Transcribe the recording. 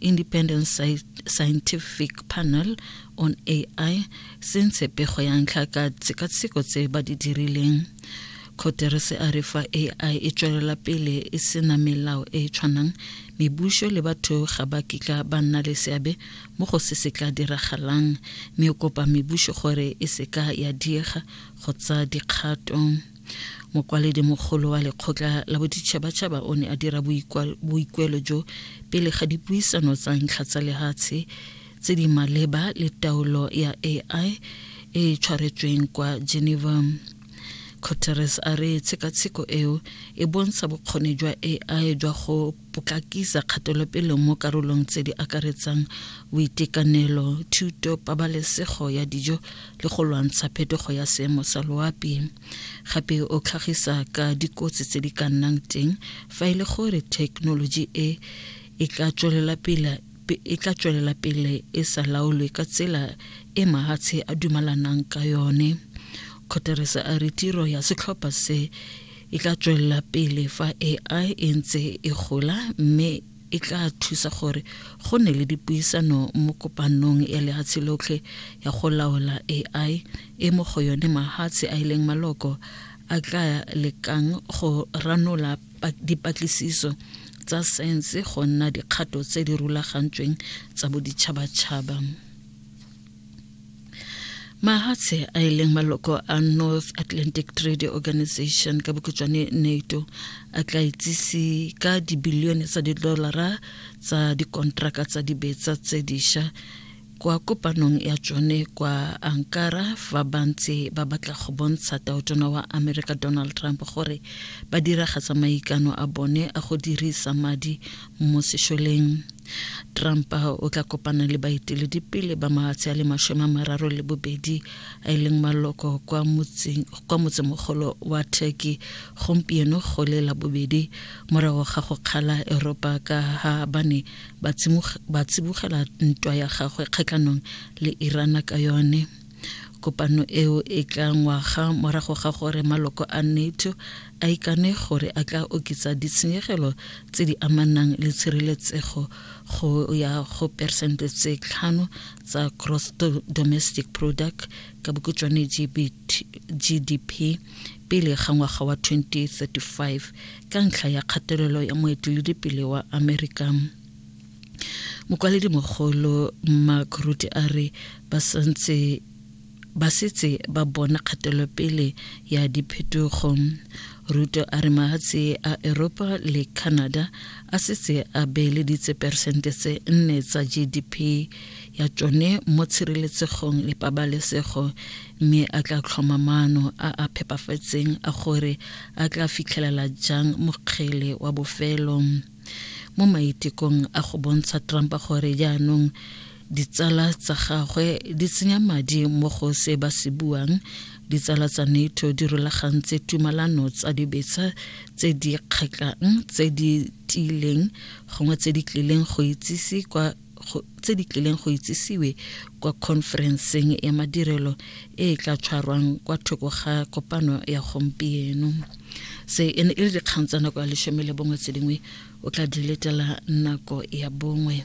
Independent Scientific Panel on AI se ntshe pego ya ntlha ka tshekatsheko tse ba di dirileng Guterres a re fa AI e tswelela pele e sena melao e e tshwanang mebuso le batho ga ba kitla ba nna le seabe mo go se se tla diragalang mme o kopa mebuso gore e seka ya diega go tsa dikgato mokwaledi mogolo wa lekgotla la boditšhabatšhaba o ne a dira boikuelo jo pele ga dipuisano tsa ntlha tsa lehatshe tse di maleba le taolo ya ai e e tshwaretsweng kwa geneva guterres a re tshekatsheko eo e bontsha bokgoni jwa ai jwa go potlakisa kgatelopele mo karolong tse di akaretsang boitekanelo thuto pabalesego ya dijo le go lwantsha phetogo ya seemo sa loapi gape o tlhagisa ka dikotsi tse di ka nnang teng fa e le gore thekenoloji e e ka tswelela pele e tla tswelela pele e sa laolwe ka tsela e mahatshe a dumalanang ka yone kgoteresa a re tiro ya setlhopha se e tla tswelela pele fa ai e ntse e gola mme e tla thusa gore go ne le dipuisano mo kopanong ya lehatshe lotlhe ya go laola ai e mo go yone mahatshe a e leng maloko a tla lekang go ranola dipatlisiso tsa saense go nna dikgato tse di rulagantsweng tsa boditšhabatšhaba mahatshe a e leng maloko a north atlantic trade organization ka bokhutšwane nato a tla itsise ka dibilione tsa didolara tsa dikontraka tsa dibetsa tse diša kwa kopanong ya tsone kwa ankara fa ba ntse ba batla go bontsha taotona wa america donald trump gore ba diragatsa maikano a bone a go dirisa madi mo sešoleng trump o tla kopana le baeteledipele ba matshe a le mashome a mararo le bobedi a e leng maloko kwa motsemogolo wa turkey gompieno go le la bobedi morago ga go kgala eropa ka ga ba ne ba tsibogela ntwa ya gagwe kgatlhanong le irana ka yone Kopano eo e tla ngwaga morago ga gore maloko a NATO a ikane gore a tla oketsa ditshenyegelo tse di amanang le tshireletsego go ya go persente tse tlhano tsa gross domestic product ka bokhutswane GDP pele ga ngwaga wa 2035 ka ntlha ya kgatelelo ya moeteledipele wa Amerika. mokwaledi mogolo mark ruti a re ba santse ba setse ba bona kgatelopele ya diphetogo ruto a re mahatshe a eropa le canada a setse a beeleditse peresente tse nne tsa gdp ya tsone mo tshireletsegong le pabalesego mme a tla tlhoma maano a a phepafetseng a gore a tla fitlhelela jang mokgele wa bofelo mo maitekong a go bontsha trump gore jaanong ditsala tsa gagwe di tsenya madi mo go se ba se buang ditsala tsa nato di rulagantse tumalano tsa dibetsa tse di kgatlhang tse di tiileng gongwe tse di tlileng go itsise kwa tse di tlileng go itsisiwe kwa khonferenseng ya madirelo e e tla tshwarwang kwa thoko ga kopano ya gompieno se e ne e le dikgang tsa nako ya lesome le bongwe tse dingwe o tla di letela nako ya bongwe